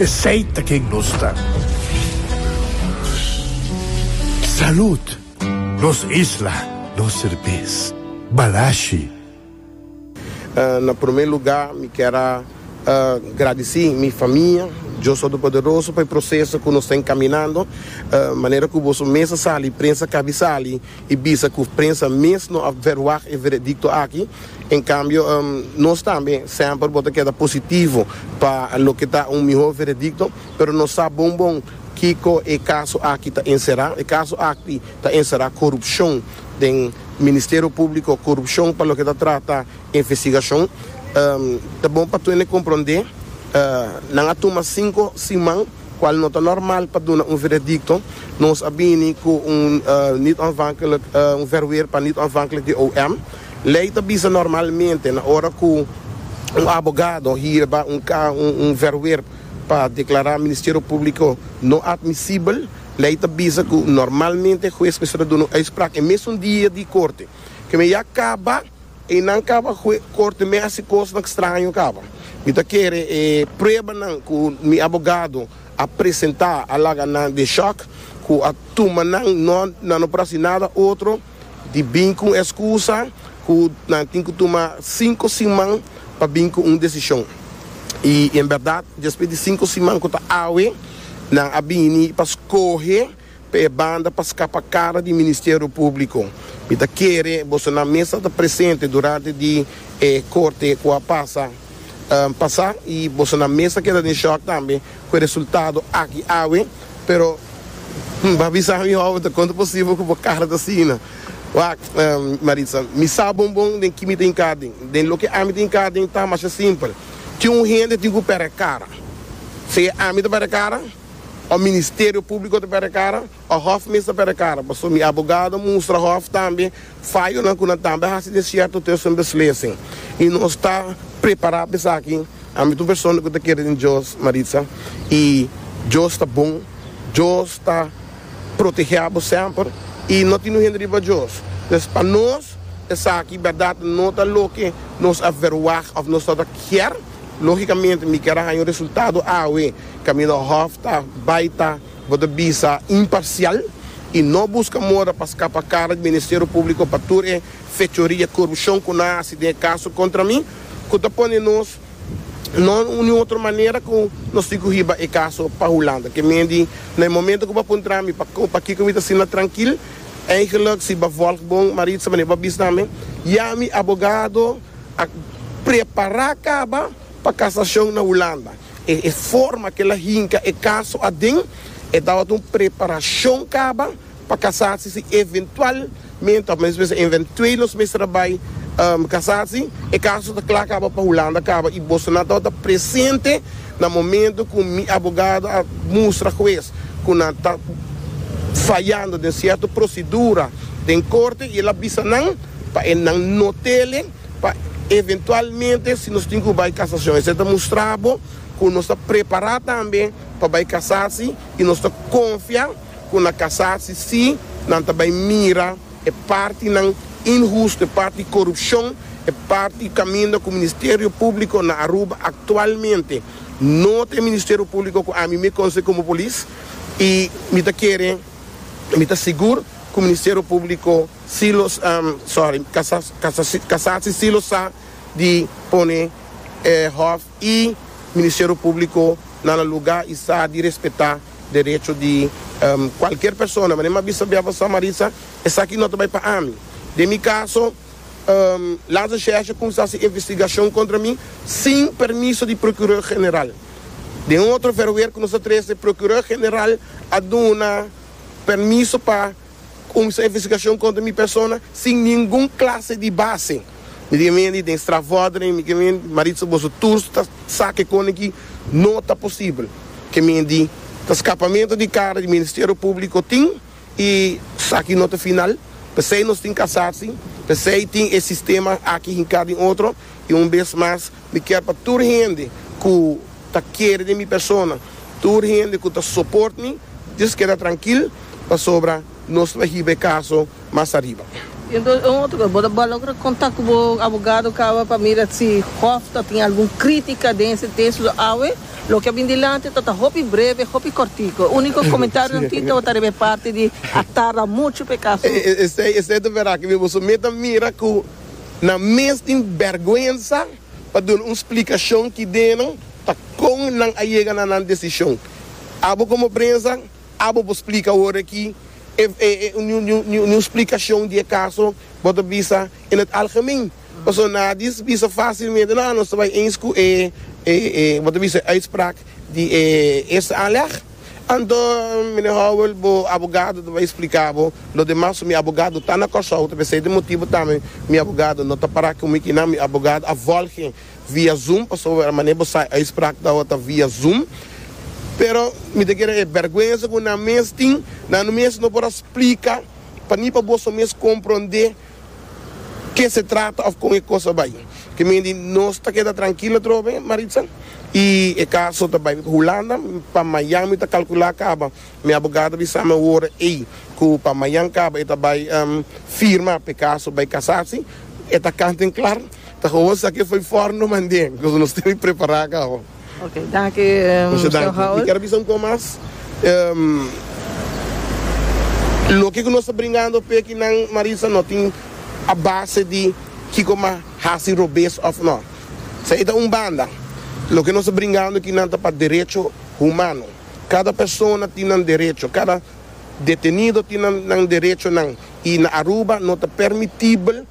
Esey ta ken nos ta. Salud! Nos isla, nos serbes. Balashi. Na prome luga mi kier a gradisi mi famia Dios Todopoderoso pa e proseso ku nos ta enkaminando. Manera ku boso mes a sali, prensa kabi sali. I bisa ku prensa mes no a verwagt e veredikto aki. En kambio, nos tambe semper bo ta keda positivo pa loke ta un mihó veredikto, pero no sa bon bon kiko e kaso aki ta enserá. E kaso aki ta enserá korupshon den Ministerio Públiko, korupshon pa loke ta trata investigashon. Ta bon pa Twene komprondé nan a tuma sinku siman. Cual no ta normal pa duna un veredicto, nos a bini cu un niet-onafhankelijk, un verweer pa niet-onafhankelijk di OM. Ley ta bisa normalmente na ora cu un abogado hierba un un verweer pa declara Ministerio Publico no admisibel, ley ta bisa cu normalmente hues mester a duna un uitspraak e mesun dia di corte. Keme ya caba. E nan kaba hue korte mi a hasi kosnan kstraño kaba. Mi ta kere e pruebanan ku mi abogado a presentá a laga nan den shòk ku a tuma nan no nan no por hasi nada otro di bin ku un eskusa ku nan tin ku tuma sinku siman pa bin ku un desishon. I en bèrdat despues di sinku siman ku ta awe nan a bini pa skohe. Pa e banda pa scapa cara di Ministerio Publico, mi ta kere boso nan mes a ta presente durante di e corte cu a pasa pasa y boso nan mes a keda den shock tambe cu e resultado aki awe, pero bo a bisa mi ora bo ta con ta posible cu bo cara ta asina? Wacht, Maritza, mi sa bon bon den ki mi ta hinca den, den loke ami ta hinca den ta masha simpel, tin un hende tin cu pera e cara, si ami ta pera e cara. O Ministerio Públiko ta perde kara o hòf mes ta perde kara. Pasobra mi abogado a mustra hòf tambe fayonan ku nan tambe a hasi den sierto tiosa un beslesen. I nos ta prepará pa esaki. Ami ta un persona ku ta kere den Dios, Maritza, i Dios ta bon. Dios ta protegé abo semper i no tin un hende riba Dios. Entonces, pa nos esaki bèrdat no ta loke nos a verwagt òf nos ta kier. Logicamente mi kier a haña un resultado awe, camino hof ta bay ta bo ta bisa imparcial y no busca moda pa scapa cara di Ministerio Publico pa tur e fechoria y corupcion cu nan a haci den e caso contra mi, cu ta pone nos no ni otro manera cu nos tin cu hiba e caso pa Hulanda. Ke men di na e momento cu bo a puntra mi pa pa kico mi ta asina trankil, eigenlijk si bo a volg bon Maritza mane bo a bisa na mi, ya mi abogado, A prepará kaba pa kasashon na Hulanda. E forma k'el a hinka e kaso aden, e tabata un preparashon kaba pa kasasi si eventualmente, òf men mester eventuelos mester a bai kasasi, e kaso ta kla kaba pa Hulanda kaba i boso nan tabata presente na momento ku mi abogado a mustra hues ku nan ta fayando den sierto prosedura den korte i el a bisa nan. pa e nan no tele pa eventualmente si nos tin cu bay casacion esey ta mustra bo cu nos ta prepara tambe pa bay casasi y nos ta confia cu na casasi si nan ta bay mira e partinan inhusto e parti corupcion e parti caminda cu Ministerio Publico na Aruba actualmente no ta e Ministerio Publico cu ami me conoce como polis y mi ta kere mi ta sigur cu Ministerio Publico Si lo sorry, kasa si si lo sa di pone e hòf i ministerio públiko na nan lugá i sa di respetá derecho di kualker persona. Manera mi a bisa biaha pa Samarisa, esaki no ta bai pa ami. Den mi kaso, Laza Xerxes a kuminsá si investigashon kontra mi sin permiso di prokuró general. Den un otro verweer ku nos ta trese, prokuró general a duna permiso pa. Con su investigacion contra mi persona sin ningun clase di base. Mi di Amy Andy den strafvordering mi ken Maritza boso tours ta sa ke kone ki no ta posibel. Ke mi di ta scapamento di cara di Ministerio Publico tin y esaki no ta final. Pesey nos tin casasi, pesey tin e sistema aki hinca den otro y un bes mas Mi kier pa tur hende ku ta kere di mi persona, tur hende ku ta soport mi, dios keda trankil, pasobra nos lo a hiba e kaso mas ariba. I entonces un otro kos, bo ta logra kontak ku bo abogado kaba pa mira si hof ta tin algun kritika den ese tesis o awe loke a bin dilanti ta ta hopi breve, hopi kòrtiko. Uniko komentarionan tin tabata riba e parti di a tarda muchu pa e kaso. Esei, esei ta verdad, ke mi bo so meta mira ku. Nan mes tin bèrgwensa pa duna un splikashon ki dena ta kon nan a yega na nan desishon. Abo komo prensa, abo por splika awor aki e un splikashon di e kaso bo ta bisa en het algemeen. Pasobra nan a bisa fásilmente nan nos ta bai eens ku e bo ta bisa e uitspraak di e eerste aanleg. Anto, Mine Howell, bo abogado ta bay splica bo lo demas so mi abogado ta na Corsou ta p'esey ta motibo tambe mi abogado no ta para cu mi kinan mi abogado a volge via zoom pasobra mane bo sai uitspraak ta ta via zoom pero mi ta kere e berguenza cu nan mes tin nan mes no por a splica pa ni pa boso mes compronde ke se trata of kon e kos a bai. Ke men di nos ta keda trankil atrobe, Maritza, i e kaso ta bai pa Hulanda. Pa mayan mi ta kalkula kaba. Mi abogado a bisa mi ora ei ku pa mayan kaba e ta bai firma pa e kaso bai kasasi. E ta kant en klar. Ta kahoba sa ke fo'i for no mande, koz nos tene prepará kaba. Ok, danki Señor Howell. Mi ker a bisa un kos mas. Loke ku nos ta bringando p'e kinan, Maritza, no tin a base di kiko m'a hasi robes òf no. Sa ei ta un banda. Loke nos ta bringando kinan ta pa derecho humano. Kada persona tin nan derecho. Kada detenido tin nan derechonan. I na Aruba no ta permitibel.